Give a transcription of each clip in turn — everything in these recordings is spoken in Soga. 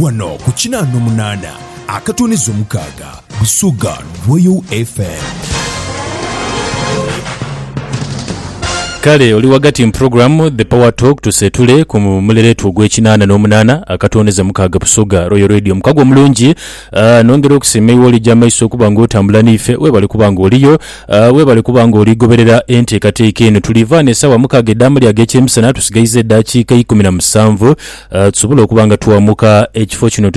Wano ku kinaa nomunaana akatuniza omukaaga Busoga Royal FM. Kale oli wagati mu program The Power Talk tusetule ku muleretu ogw'ekinaana n'omunaana akatondeza mukaaga Busoga Royal Radio mukago omulungi uh, nongera okusiima iwe olija amaiso okuba nga otambula n'ife webale kuba nga oliyo uh, webale kuba nga oligoberera enteekateeka eno tulivaana esaawa mukaaga edaamu lyaga ekyemisana tusigaiza edaakiika ikumi na musanvu tusobole okuba nga twamuka ekifo kino.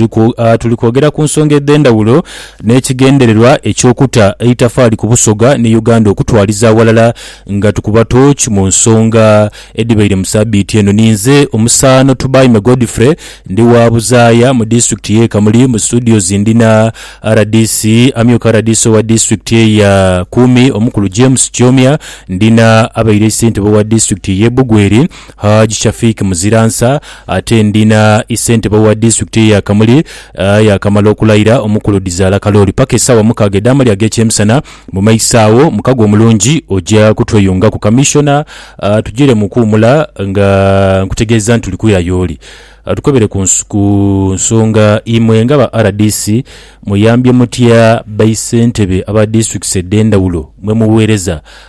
Tuli kwogera ku nsonga edh'endhawulo n'ekigendererwa eky'okuta eitafaali ku Busoga ni Uganda okutwaliza aghalala nga tukuba tooki mu nsonga edhibaire mu sabiiti eno. Ninze omusaano Tubaime Godfrey ndi wa Buzaaya mu disitulikiti y'e Kamuli. Mu studios ndi na rdc, amyuka rdc owa disitulikiti eye ya Kumi omukulu James Kyomya, ndi na abaire ssentebe owa disitulikiti y'e Bugweri, Hajj Shafiq Muziransa ate ndi na Issentebe owa disitulikiti eya Kamuli aa yaakamala okulayira omukulu Dhizaala Kalooli. Paka esaawa mukaaga edh'amalya ag'ekyemisana mu maiso agho, mukago omulungi oja kutweyungaku. Kamissiona aa tugire mu kuwumula nga nkutegeeza nti tuli kwira y'oli atukebere ku ku nsonga. Imwe nga ba rdc muyambye mutya baissentebe aba disitulikisi edh'endhawulo mwe muweereza?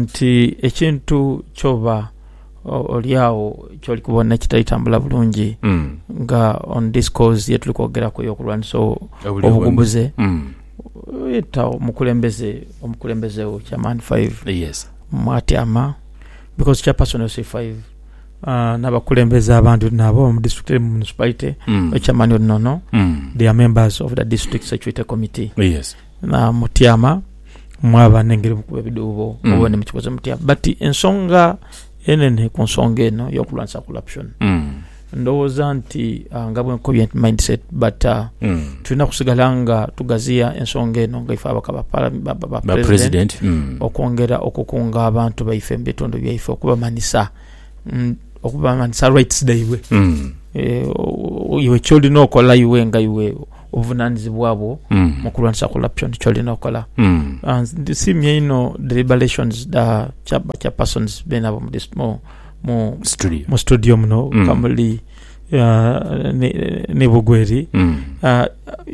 nti ekintu kyoba oli agho kyoli kubona ekitali tambula bulungi nga on this cause ye tuli kwogeraku ey'okulwanisa obugumbuze, yeta omukulembeze, omukulembeze wo kya Man 5 mwatyama because kya person yo C5 n'abakulembeze abandi nabo mu district eri mu municipality, ekya mani oli nono, they are members of the district security committee. namutyama mwaba nengeri mukuba ebidhuubo Mm. oba nemukikoze mutya but ensonga enene ku nsonga eno yokulwanisa corruption Mm. ndowooza nti ah, nga bwenkobye nti mindset but ah, Mm. tulina kusigala nga tugaziya ensonga eno nga ife abaka ba para- ba- ba- ba ba president president Mm. okwongera okukunga abantu baife mu bitundu byaife okubamanisa mm, okubamanisa rights dhaibwe Mm. Eh, o- o- iwe kyolina okola iwe nga iwe obuvunanizibwa bwo mu kulwanisa corruption kyolina okola. Ndisiimye inho deliberations dha ba chairpersons beene abo mu studio muno kamuli ni Bugweri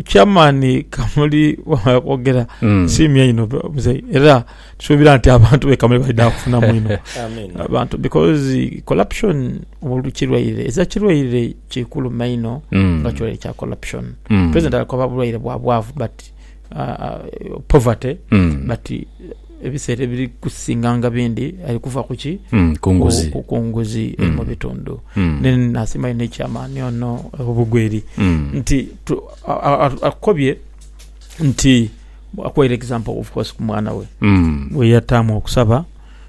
chairman kamuli kwogera nsiimye inho era tusuubira nti abantu be kamuli baidha kufunamu inho abantu because corruption mulu kirwaire eza kirwaire kikulu maino mm. nga kirwaire kya corruption mm. president alakoba bulwaire bwa bwavu but uh, uh, poverty mm. but uh, ebiseera ebiri kusinganga bindi ali kuva kuki mm, kunguzi kunguzi mm. mu bitundu mm. then nasima ine ekyamaani ono obugweri mm. nti akobye nti Akwaire example of course ku mwana we Mm. gwe yataamu okusaba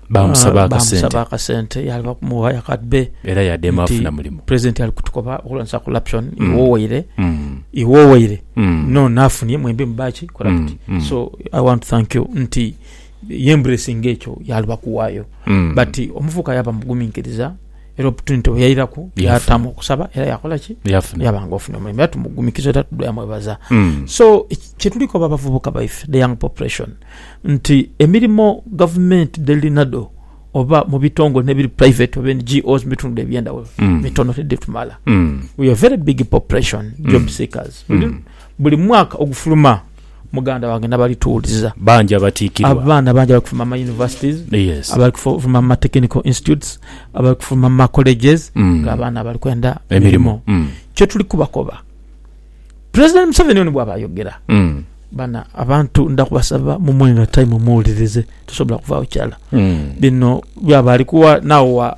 Baamusaba ah, akasente. baamusaba akasente yaali bakumuwa yakadbe Era yadeema Nti- afuna mulimu. president ali kutukoba okulwanisa corruption Mm. iwowaire Mm. iwowaire Mm. no nafunye mwembi mubaki Mm. corrupt Mm. so i want to thank you nti yembracing ekyo yaali bakuwaayo Mm. but omuvuka yaba muguminkiriza Era oputuniti bwe yairaku, yaatamu okusaba era yakola ki? Yafuna. Yaba nga ofunye omulimu. Era tumugumikiza era tudhoya mwebaza. Mm. So, kye tuli koba abavubuka baife, the young population, nti emirimo gavumenti dh'eli nadho oba mu bitongole n'ebiri private oba NGOs mu bitundu eby'endhaghulo, Mm. mitono tidhitumala. Mm. We are very big population job seekers. Buli mwaka ogufuluma. Muganda wange nabali tuwuliza. Bangi abatiikirwa. Abaana bangi abali kufuluma mu ma universities, Yes. abali kufuluma mu ma technical institutes, abali kufuluma mu ma colleges Mm. nga abaana bali kwenda Emirimo. mirimo. Mm. Kyo tuli kubakoba. President Museveni ono bwaba ayogera, Mm. bana abantu nda kubasaba mumuwe nga time muwulirize, tosobola kuvaawo kyala. Mm. Bino byaba ali kuwa nawa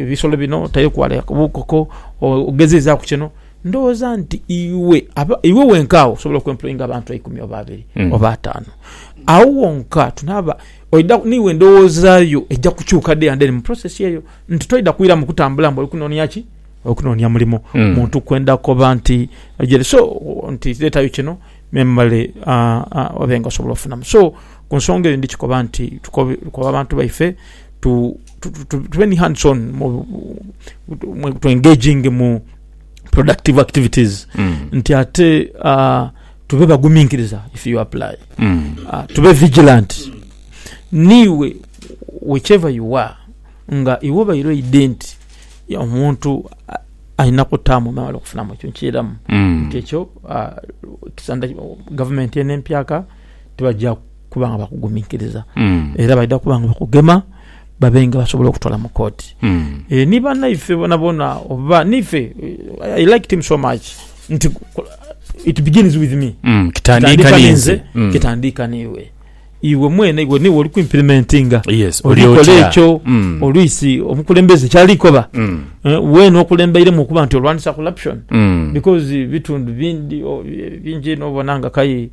Ebisolo bino otaire ku ghale akabokoko ogezezaaku kino. Ndhoghoza nti iwe, iwe wenka agho osobola okwempulowinga abantu eikumi oba abiri oba ataanu. Agho wonka tunaaba, oidha, n'iwe endhowoza yo eidha kukyuka day and day mu process eyo nti toidha kwira mu kutambula mbu oli kunoonia ki? Oli kunoonia mulimo. Muntu kwenda koba nti aidhire. So, nti leetayo kino memale obe nga osobola ofunamu. So. Ku nsonga eyo, ndi kikoba nti tukobe abantu baife tube ni hands on, to engaging mu productive activities nti ate tube baguminkiriza if you apply, tube vigilant niiwe whichever you are nga iwe obaire oidhe nti omuntu alina kutaamu nawe okufunamu ekyo nkiiramu nti ekyo Gavumenti eno empyaka. tibaja kuba nga bakuguminkiriza mm. era baidha kuba nga bakugema babe nga basobola okutwala mu kooti mm. e, ni banaife bonabona oba nife i liked him so much nti it begins with me mm. kitandika ninze mm. kitandika niwe iwe mwene iwe niwe oli kuimplementinga yes, olikola ekyo mm. oluisi omukulembeze kyalikoba mm. uh, eh, wena okulembeiremu okuba nti olwanisa corruption mm. because bitundu bindi bingi nobona nga kai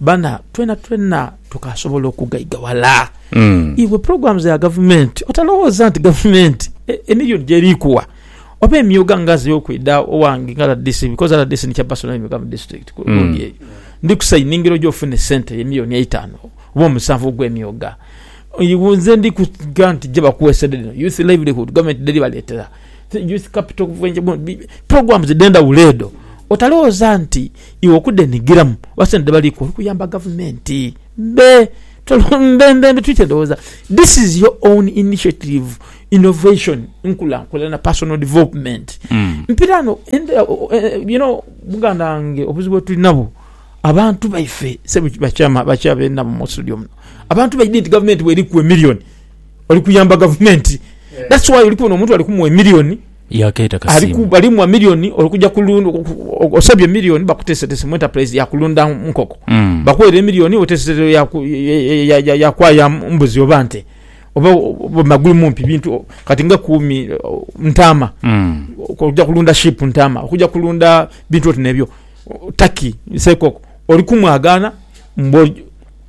bana twena twena tukasobola okugaiga wala iwe programs ya gavumenti otalowoza nti gavumenti emilioni gyeri kuwa oba emyoga nga ze okwida owange nga rdc because rdc ni chair person emyoga mu district gundi eyo ndi ku sayiningira oje ofune esente eyo emilioni eitano oba omusanvu ogwe myoga iwe nze ndi kuga nti gye bakuwesedde dhino youth livelihood gavumenti dheri baletera. Youth Capital Bubenje Bond bi, programs edh'endhaghulo edho otalowooza nti iwe okudhenhigiramu oba sente dhebali kuwa oli kuyamba gavumenti. Mbe, mbe, mbe, mbe twite ndhowooza. This is your own initiative, innovation, nkulankulana, personal development. Mpiraano ente, you know, muganda wange obuzibu bwetuli nabwo, abantu baife, ssebo, ba chairman, ba chair be nabo mu studio muno, abantu baidhi nti gavumenti bw'eri kuwa emillion, oli kuyamba gavumenti that's why oli kubona omuntu ali kumuwa emiliyoni yakeeta kasimu ali muwa miliyoni olikuja kulunda osabye miliyoni bakutesetese mu enterprise ya kulunda nkoko mm. bakuwere emiliyoni otesetese ya, ya, ya, ya, ya kwaya mbuzi oba nte oba magulu mumpi bintu kati nga kumi ntama mm. okuja kulunda ship ntama okuja kulunda bintu oti nebyo taki sekoko oli kumwagana mbo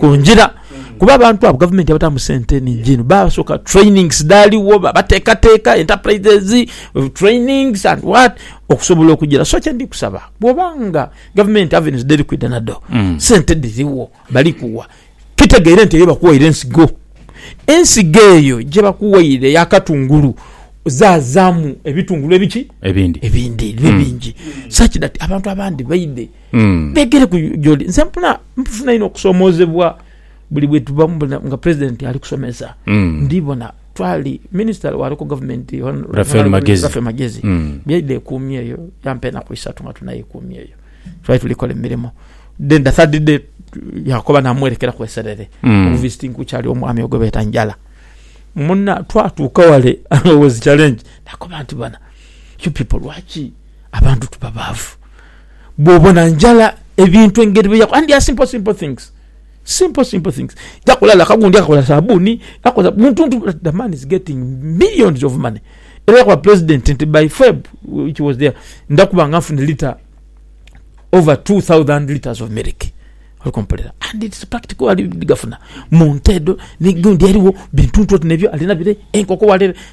ku ngira kuba abantu abo gavumenti yabatamu sente nhingi inho basoka trainings dhaligho babatekateka enterprises trainings and what okusobola okugira so kyendi kusaba bwoba nga gavumenti avenues dheri kwidha nadho mm. sente dhirigho balikuwa kitegeire nti eyo bakuwaire ensigo ensigo eyo gyebakuwaire yakatungulu zazamu ebitungulu ebiki ebindi ebindi bibe mm. bingi mm. such that abantu abandi baidhe mm. begere ku joli nze mpuna mpufuna ino okusomozebwa buli bwetuba mubona nga president ali kusomesa mm. ndibona twali minister wa local government Rafael Magezi, Rafael Magezi. Mm. byaida ekumi eyo yampa enaku isatu nga tunayo ekumi eyo twali tulikola emirimo then the third day yakoba namwerekera ku eserere mm. obuvisiting kukyali omwami ogwe beta njala muna twatuuka wale was challenge nakoba nti bana you people lwaki abantu tuba baavu Bwobona njala ebintu engeri bye yakola and they are simple simple things simple simple things yakola like gundi akakola sabuni yakola muntu nti but the man is getting millions of money era yakoba president nti by Feb which was there nja kuba nga nfunye liter over 2000 liters of milk oli kumpulira and it's practical ali gafuna mu nte edho ni gundi eriwo bintu nti oti nebyo alina bire enkoko wale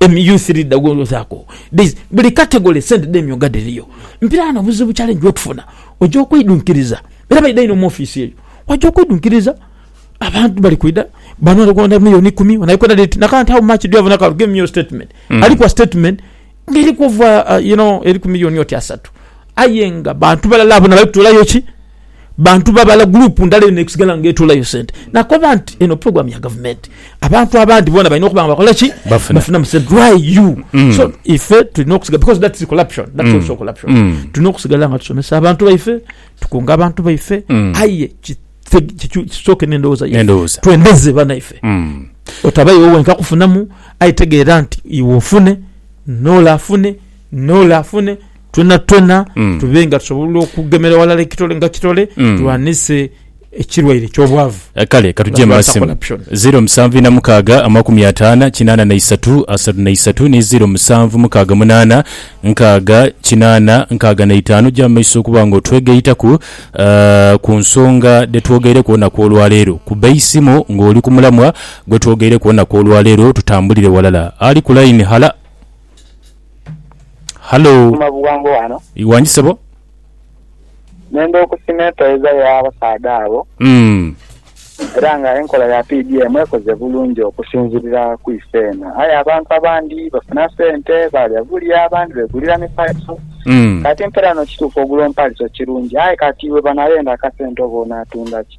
Emi youth leader gwolwozaku these buli category sente dhemyoga dhiriyo mpira wano obuzibu challenge wetufuna oja okwidhunkiriza era baidha inho mu office eyo waja okwidhunkiriza abantu bali kwidha bano ali kwenda million ikumi ono ali kwenda dhiti na kant how much do you have on account give me your statement alikuwa statement nga eriku ova you know eriku million oti asatu aye nga bantu balala abo nabali kutolayo ki bantu babala, group ndala eyo nesigala nga etoolayo sente. Nakoba nti eno program ya gavumenti, abantu abandi bona balina okuba nga bakola ki? Bafuna. Bafunamu sente. Why you? Mm. So ife tulina okusigala because that is corruption. That's Mm. also corruption. Mm. Tulina okusigala nga tusomesa abantu baife, tukunga abantu baife, Mm. aye ki- te- kicu- kisooke n'endowooza yaife. N'endowooza. Twendeze banaife. Mm. Otaba iwe wenka kufunamu, aye tegeera nti iwe ofune, n'ole afune, n'ole afune, Twonatwona tube nga tusobola okugemera ghalala ekitole nga kitole, tulwanise ekirwaire eky'obwavu. Kale ka tugye mu masimu. 0746 50 83 33 ni 0768 nkaaga kinaana nkaaga na itaanu. Ja mu maiso okuba nga otwegaitaku ku nsonga dhe twogeireku olunaku olwaleero. Kuba eisimu ng'oli ku mulamwa gwe twogeireku olunaku olwaleero, tutambulire ghalala. Ali ku laini, hala. Halo. Kuma buwango wano. Iwangi sebo. Nenda okusima epereza ya basaadha abo. Mm. Era nga enkola ya PDM ekoze bulungi okusinzirira ku ife eno. Aye abantu abandi bafuna sente balya bulya abandi begulira mipaliso. Mm. Kati mpera no kituufu ogula omupaliso kirungi aye kati webanayenda akasente oba onatundaki.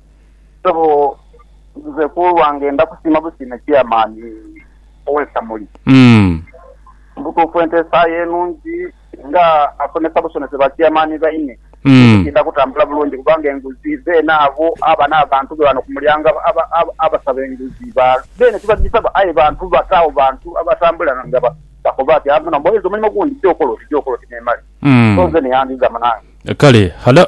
Sebo nze kulwange ndakusiima busiime chairman owekamuli. Mubutuufu enteesaaye nungi nga asomesa busomese ba chairman baine ekitinda kutambula bulungi kubanga enguzi beene abo aba nabantu be wano kumulyango abasaba enguzi beene tibajisaba aye bantu bataawo bantu abatambula nga bakoba ati muno mboleeza omulimo gundi gyokola oti gyokola oti nemale so nze neyandizaamu nange. Kale hala.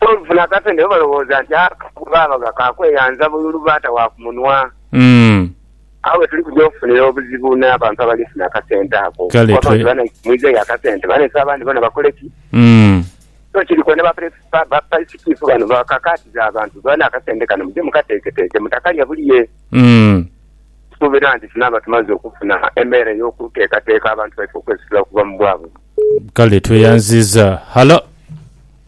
Olufuna akasente bo balowooza nti akagugu baabaga ka kweyanza bululu baata wa ku munwa. Agho we tuli kuja okufunira obuzibu n'abantu abali funa akasente ako. Okukoba nti banaise mwidha ya kasente, banaise abandi bona bakole ki? So kiri kwene bapisikiifu bano bakakaatiza abantu, bona akasente kano muje mukateeketeeke, mutakalya bulie. Nsuubira nti tunaaba tumaze okufuna embeera ey'okuteekateeka abantu baife okwesitula okuva mu bwavu. Kale tweyanziza. Halo.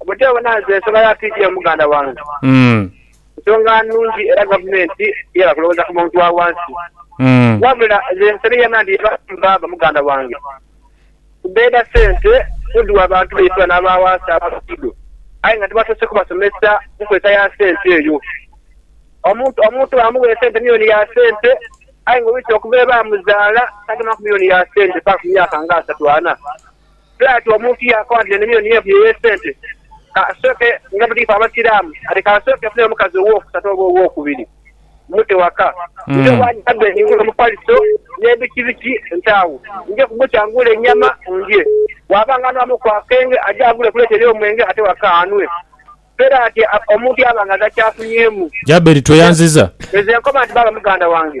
Obuteewona nze nsonga ya PDM muganda wange. Nsonga nnungi era gavumenti yeba kulowooza ku muntu wa wansi. Wabula nze nsabye yena nti yeba mbaaba muganda wange. Kubeda sente muddu wa bantu baifula n'aba wansi aba luguudo aye nga tibasoose kubasomesa ku nkozesa ya sente eyo. Omuntu omuntu baamuwa esente miyoni ya sente aye nga owiita okuva ebaamuzaala tagema ku miyoni ya sente mpaka ku myaka nga asatu ana. Bwire ati omuntu yaakoba nti enimiro niyo evuyo ey'esente, ka asooke, nga buli ife Abasiraamu, ati ka asooke afune omukazi owookusatu oba owookubiri mmute waka. Nja obwanyima dde ningule omufaliso n'ebikibiki nte agho nja kubukya ngule ennyama ndye. Bw'aba nga anwamu ku akenge, aje agule ku leeta ey'omwenge ate waka anwe. Bwire ati omuntu yaaba nga takyafunyemu. Jaberi, Tweyanziza. Nze nkoba nti baaba muganda wange.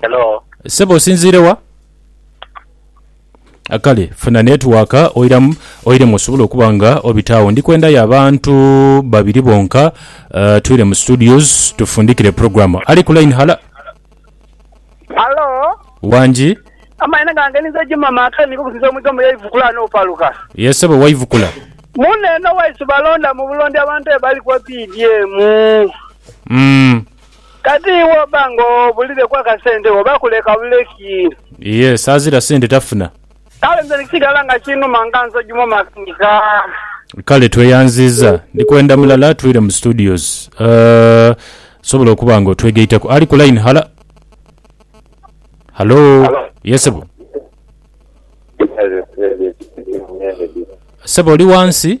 Hello. Sebo osinziire wa? Kale funa network oiramu oiremu osobole okuba nga obitaawo. Ndi kwendayo abantu babiri bonka uh, twire mu studios tufundikire program. Ali ku line hala. Hello. Wangi. Amaina gange ninze Juma Makani niko kusinza omwiga mu yaivukula no paluka. Yes sebo waivukula. Mune no waisu balonda mu bulondi abantu ebali kwa PDM. Mm. Kati iwe oba nga obulireku akasente wo oba kuleka buleki. Yes azira sente tafuna. Kale nze nikisigala nga kinuma nga nsogi mu makanika. Kale tweyanziiza. Ndi kwenda mulala atwire mu studios. Osobola okuba nga otwegaitaku. Ali ku line. Hala. Halo. Yes sebo. Sebo oli wansi.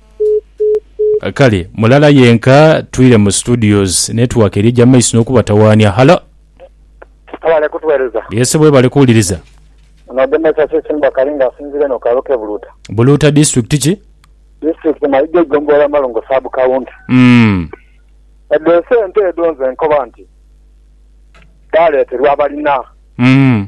Kale mulala yenka twire mu studios network eri eja maiso nokubatawaania. Hallo. Mwebale kutuwereza. Yes webale kuwuliriza. Ono Demesa Sisimbwa Kali nga asinzira eno kaalo ke Buluuta. Buluuta district ki? District Mayiga Eigombolola Malungu sub county. Umm. Edho esente edho nze nkoba nti dhaleterwa abalina. Umm.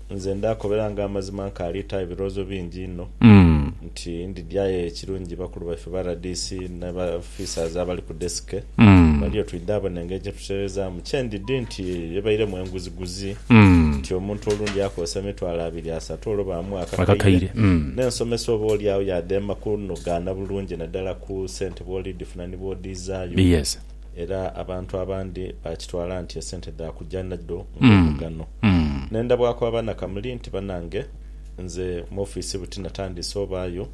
Nze ndaakobera nga amazima nkaali ta ebirowoozo bingi inho nti ndidyayo ekirungi bakulu baife ba rdc ne ba officers abali ku desk baliyo twidha abo n'engeri gye tutereezaamu. Kye ndidhi nti ebairemu enguziguzi nti omuntu olundi akozesa emitwalo abiri asatu olwo baamugha akakaire n'ensomesa oba oli agho yaadheema kunogaana bulungi naddala ku sente bw'olidhifuna ni bw'odhiizaayo. Era abantu abandi baakitwala nti esente dha kuja nhadho ng'omugano. Ne ndhabwaku abaana kamuli nti banange nze mu ofiisi buti natandiise obaayo,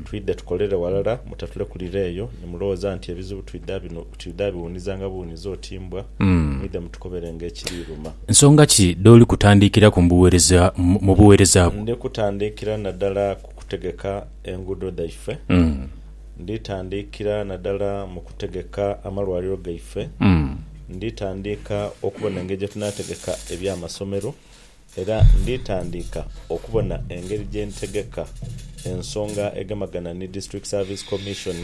twidhe tukolere ghalala mutatulekulira eyo ni mulowooza nti ebizibu twidha biwuunizanga buwuunizi oti mbwa, mwidhe mutukobere ng'ekiri iruma. Nsonga ki dh'oli kutandiikiraku mu buweereza bwo? Ndi kutandiikira naddala ku kutegeka enguudo dhaife. Nditandikira nadala mu kutegeka amalwaliro gaife. Nditandika okubona engeri gye tunategeka eby'amasomero era nditandika okubona engeri gye ntegeka ensonga egemagana ni District Service Commission.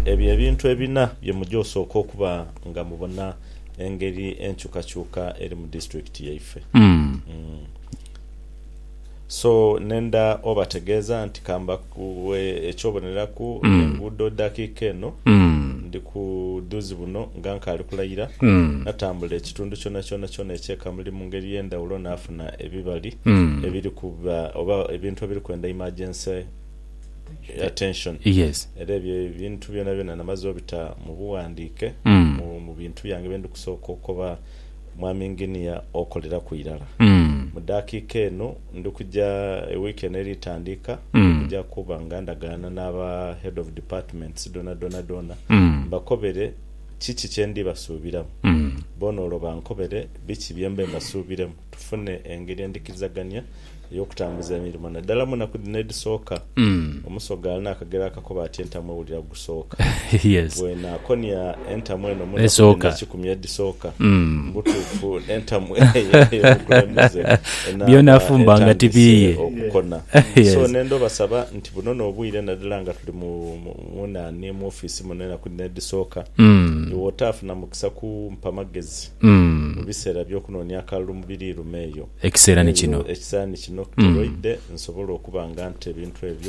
Ebyo ebintu ebina bye muja osooka okuba nga mubona engeri enkyukakyuka eri mu disitulikiti yaife. So nenda obategeeza nti ka mbaghe eky'oboneraku, enguudo dakiika eno ndi ku dhuzi buno nga nkaali kulayira, natambula ekitundu kyonakyona kyona eky'e Kamuli mu ngeri ey'endhawulo naafuna ebibali ebiriku oba ebintu ebiriku enda emergency attention. Era ebyo ebintu byonabyona namaze obita mu bughandiike mu bintu byange bye ndi kusooka okoba. Mwami Nginiya okoleraku irala. Mu dakiika eno ndi kuja, ewiiki eno eri tandika, ndi kuja kuba nga ndagaana n'aba Head of Departments dhonadhona dhoona mbakobere kiki kye ndi basuubiramu, boona olwo bankobere biki bye mbe mbasuubiremu. tufune engeri endhikirizagania ey'okutambuza emirimo naddala mu naku dhino edhisooka. Omusoga alina akagero akakoba ati entamu ewulira gusooka. Bwenaakonia entamu eno mu naku dha nakikumi edhisooka, mu butuufu entamu eyo ey'obukulembeze enaaba etandise okukona. So ne ndooba saba nti buno n'obwire naddala nga tuli mu mu nani mu ofiisi muno enaku dhino edhisooka, iwe otaafuna mukisa kumpa magezi. mu biseera by'okunoonia akalulu mu biriiruma eyo. Ekiseera ni kino. N'olwo ekiseera ni kino, kitoloidhe nsobole okuba nga nta ebintu ebyo.